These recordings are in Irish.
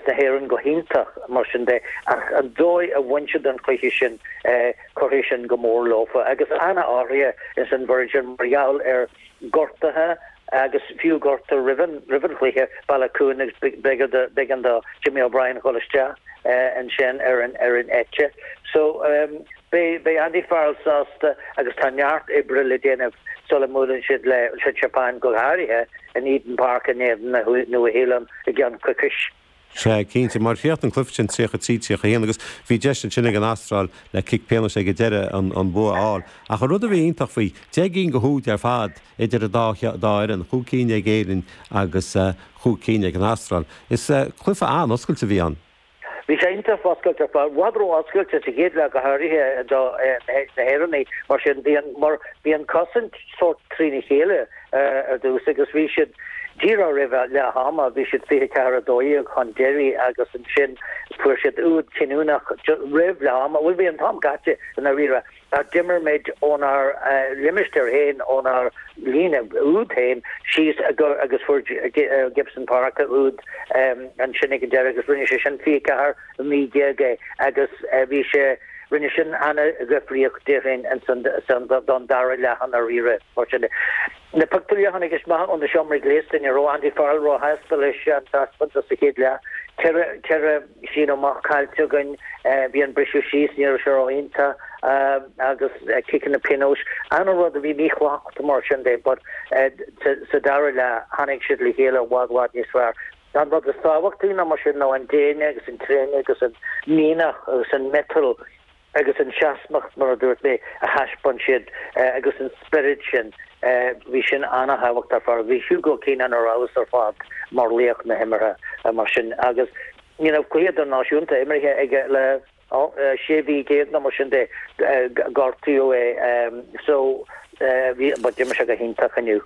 na hÉireann go hiontach, mar sin de, ach an dóigh a bhain siad an cluiche sin, cuirfidh sin go mór leofa. Agus an-athruithe insan bhfoireann mar gheall ar ghortuithe agus fiú gortú roimh an roimh an chluiche, Baloucoune agus b'fhéidir do b'éigean do Jimmy O'Brien dhul isteach ansin ar an ar an eite. So, Beidh Andy Farrell sásta agus tá neart oibre le déanamh sula mbuaileann siad leis an tSeapáin, go háirithe in Eden Park in éadan na Nua-Shéalainn i gceann coicis. Sea, cinnte, mar chríochnaigh an cluiche sin 33, 31 agus bhí deis ansin ag an Astráil le cic pionóis ag an deireadh an bua a fháil. Ach an rud a bhí iontach faoi, deich gcinn de úid ar fad idir an dá fhoireann, chúig cinn ag Éirinn agus chúig cinn ag an Astráil. Is cluiche an-oscailte a bhí ann. Bhí sé iontach oscailte, i bhfad ró-oscailte sa chéad leath go háirithe do na hÉireannaigh mar sin, mar bhí an cosaint sórt trína chéile ar dtús agus bhí siad, díreach roimh leath ama, bhí siad 24, 12 chun deiridh agus ansin fuair siad úd cinniúnach roimh leath ama, bhuel bhí an t-am caite i ndáiríre. Ná d'imir muid ónár limistéar féin, ónár líne úd féin síos agus fuair Gibson Park úd ansin ag an deireadh agus rinne sé sin 24, 19 é agus bhí sé, rinne sin ana-dhifríocht daofa ansin don dara leath i ndáiríre. Mar sin de, na pictiúirí a tháinig amach ó na seomraí gléasta, ní raibh Andy Farrell róshásta leis an taispeántas sa chéad leath, ceithre Síneadh amach caillte againn. Bhí an briseadh síos, ní raibh sé rófhónta, agus ciceanna pionóis, ana rud a bhí mísmacht mar sin de, but sa dara leath tháinig siad le chéile i bhfad bhfad níos fearr. An rud is tábhachtaí ná mar sin ná an déine agus an tréine agus an mianach agus an miotal agus an tseasmhacht, mar a dúirt mé, a thaispeáin siad agus an spiorad sin, bhí sin ana-thábhachtach ar fad. Bhí Hugo Keenan ar fheabhas ar fad mar laoch na himeartha mar sin agus ní raibh cluiche idirnáisiúnta imeartha aige le 16 mhí nó mar sin de, gortaíodh é, so, bhí, but d'imir sé go hiontach inniu.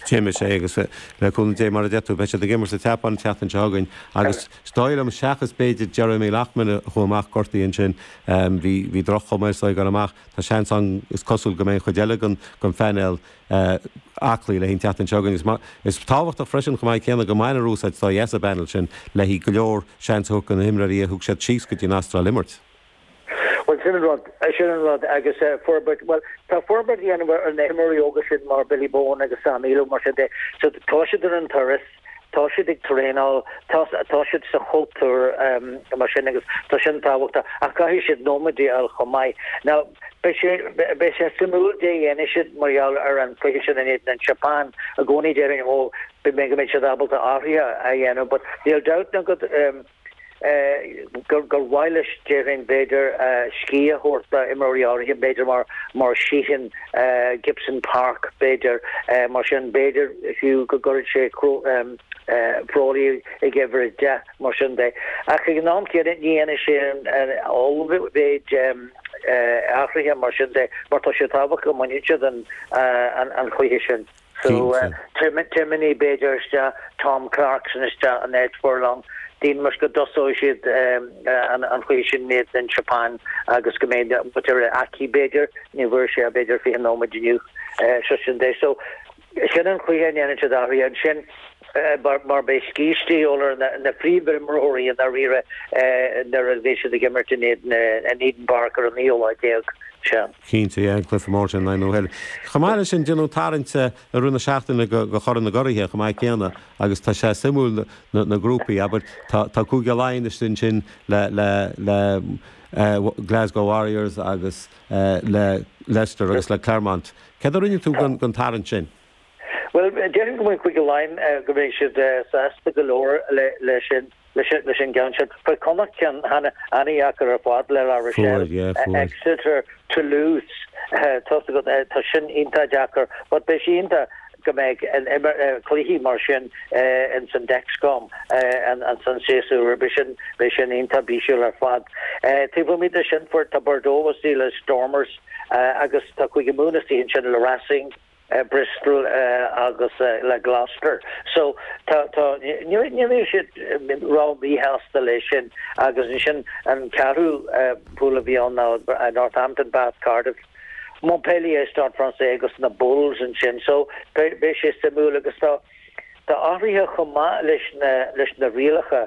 D'imir sé, agus le cúnamh Dé, mar a deir tú, beidh siad ag imirt an tSeapáin an tseachtain seo chugainn agus is dóigh liom, seachas b'fhéidir Jeremy Loughman a chuaigh amach gortaithe ansin, bhí droch-chuma air is é ag dul amach, tá seans ann is cosúil go mbeidh an chuid eile den phainéal aclaí le haghaidh an tseachtain seo chugainn. Is tábhachtach freisin chomh maith céanna go mbainfear úsáid as an bpainéal sin le haghaidh go leor seans a thabhairt do na himreoirí a thug siad síos go dtí an Astráil imirt. Bhuel, sin an rud, sin an rud, agus forbairt, bhuel, tá forbairt a dhéanamh ar na himreoirí óga sin mar Billy Bohan agus Sam Illo mar sin de, so tá siad ar an turas, tá siad ag traenáil, tá, tá siad sa chultúr mar sin agus tá sin tábhachtach ach caithfidh siad nóiméid a fháil chomh maith. Now, beidh sé, beidh sé suimiúil caidé a dhéanfaidh siad mar gheall ar an cluiche sin in éadan na Seapáine i gcónaí déarfainn, oh, beidh siad ábalta athruithe a dhéanamh but níl dabht ná go, gur mhaith leis, déarfainn, b'fhéidir, scíth a thabhairt d'imreoirí áirithe, b'fhéidir, mar Sheehan, Gibson Park, b'fhéidir. Mar sin, b'fhéidir, fiú, go gcuirfidh sé Frawley ag uimhir a deich, mar sin de. Ach ag an am céanna, ní dhéanfaidh sé an ollmhéid athruithe, mar sin de, mar tá sé tábhachtach go mbaineann siad an cluiche sin. Cinnte. Tabharfaidh b'fhéidir isteach Tom Clarkson isteach in áit Furlong, déarfainn, seans go dtosóidh siad an cluiche sin in éadan na Seapáine agus go mbeidh Bundee Aki b'fhéidir, ní bhfuair sé b'fhéidir 20 nóiméad inniu, so sin de. So sin an chaoi a ndéanann siad athruithe ansin. mar beidh scíste uilig ar na príomhimreoirí i ndáiríre nuair a bheas siad ag imirt in Eden Park ar an ochtú lá déag sin. Cinnte, yeah, cluiche mór, I know her. Chomh maith leis sin, déanadh an tarraingt i rith na seachtaine do Chorn na gCuradh chomh maith céanna agus tá sé suimiúil na grúpaí, abair, tá Cúige Laighean istigh ansin le Glasgow Warriors agus le Leicester agus le Clermont. Céard a rinne tú den tarraingt sin? Bhuel, déarfainn go bhfuil Cúige Laighean, go mbeidh siad sásta go leor leis an gceann sin. Fuair Connacht ceann an-dheacair ar fad le La Rochelle, Exeter, Toulouse, tá's agat, tá sin iontach deacair. But beidh sé iontach go mbeidh cluichí mar sin ins an Dexcom an séasúr seo chugainn, beidh sin iontach bisiúil ar fad. Taobh amuigh de sin, tá Bordeaux istigh le Stormers agus tá Cúige Mumhan istigh ansin le Racing. le Bristol agus le Gloucester so tá tá ní bheidh siad ró-mhíshásta leis sin agus ansin an ceathrú pool a bhí ann ná Northampton, Bath, Cardiff, Montpellier, Stade Francais agus na Bulls ansin so beidh sé suimiúil agus tá tá athruithe chomh maith leis na leis na rialacha.